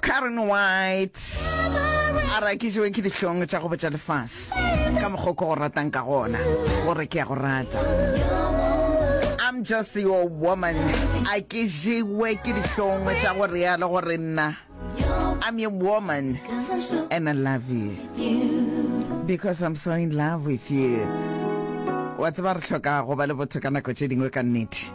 karen white a ra ke jewe ke dihlong tša go botša lefase ka mokgoko go ratang ka gona gore ke ya go rata i'm just your woman a ke jewe ke dihlong tša go realo gore nna i'm your woman and i love you because i'm so in love with you wa tseba re tlhoka go ba le botho ka nako tše dingwe ka nnete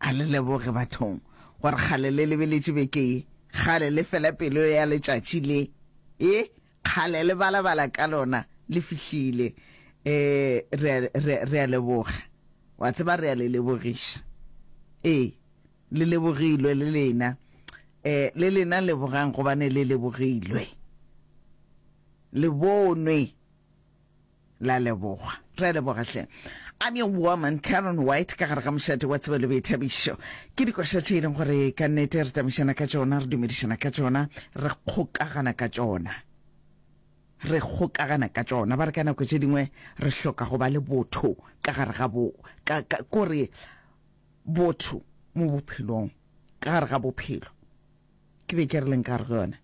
A le leboge, bathong, gore kgale le lebeletše beke ye, kgale le fela pelo ya letšatši le, e, kgale le balabala ka lona, le fihlile. E, re a, re, re a leboga. Wa tseba, re a le lebogiša. Ee, le lebogilwe, le lena. E, le lena lebogang, gobane le lebogilwe. Le bonwe. La leboga. Re a leboga hle. I'm your woman, Karen White, ka gare ga mošate wa tsebo le boithabišo. Ke dikoša tše e leng gore ka nnete re tamišana ka tšona, re dumedišana ka tšona, re kgokagana ka tšona. Re kgokagana ka tšona. Ba re ka nako tše dingwe re hloka go ba le botho ka gare ga bo, ka, ka, kore botho mo bophelong, ka gare ga bophelo. Ke be ke re leng ka gare go yona.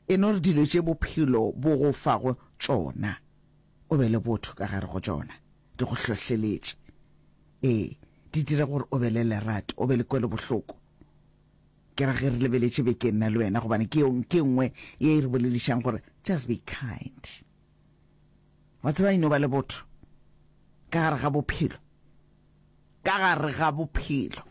e no re dilo tše bophelo bo go fago tšona o be le botho ka gare go tšona, di go hlohleletše, ee, di dira gore o be le lerato, o be le kwelobohloko. Ke ra ge re lebeletše beke nna le wena, gobane ke yong ke nngwe ye e re boledišang gore just be kind. Wa tseba e no ba le botho ka gare ga bophelo, ka gare ga bophelo.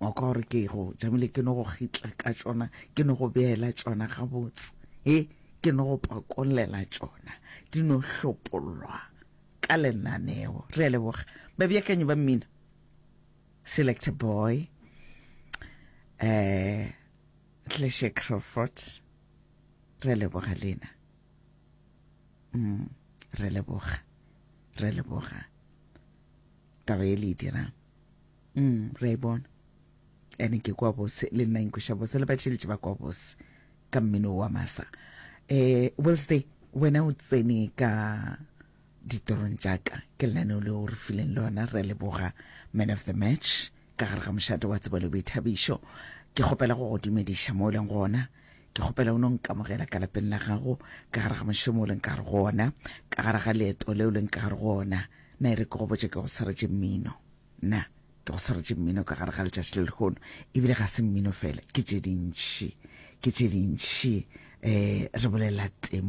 wa kwa gore ke go jamile ke no go gitla ka tšona ke no go beela tšona gabotse e ke no go pakolela tšona di no hlopolwa ka lenaneo re a leboga babeakanyi ba mmina select boy um eh, tleshe crawford re a leboga lena mm, re leboga re leboga taba e le e dirang Mm, re a e bona. Ene ke kwa bose, le nna inkweša bose, le batšheletše ba kwa bose ka mmino wa masa. Eh, Wednesday, wena o tsene ka ditorong tšaka ke lenaneo le o re fileng lona re leboga man of the match ka gare ga mošate wa tsebo le boithabišo ke kgopela go go dumediša mo o leng gona ke kgopela o no nkamogela ka lapeng la gago ka gare ga mošomo o leng ka gare go ona ka gare ga leeto le o leng ka gare go ona na e re ke go botse ke go tshwaretse mmino Na ke go swaretše mmino ka gare ga letšatši le lehono ebile ga se mmino fela ke tše dintši ke tše dintši um re bolela temo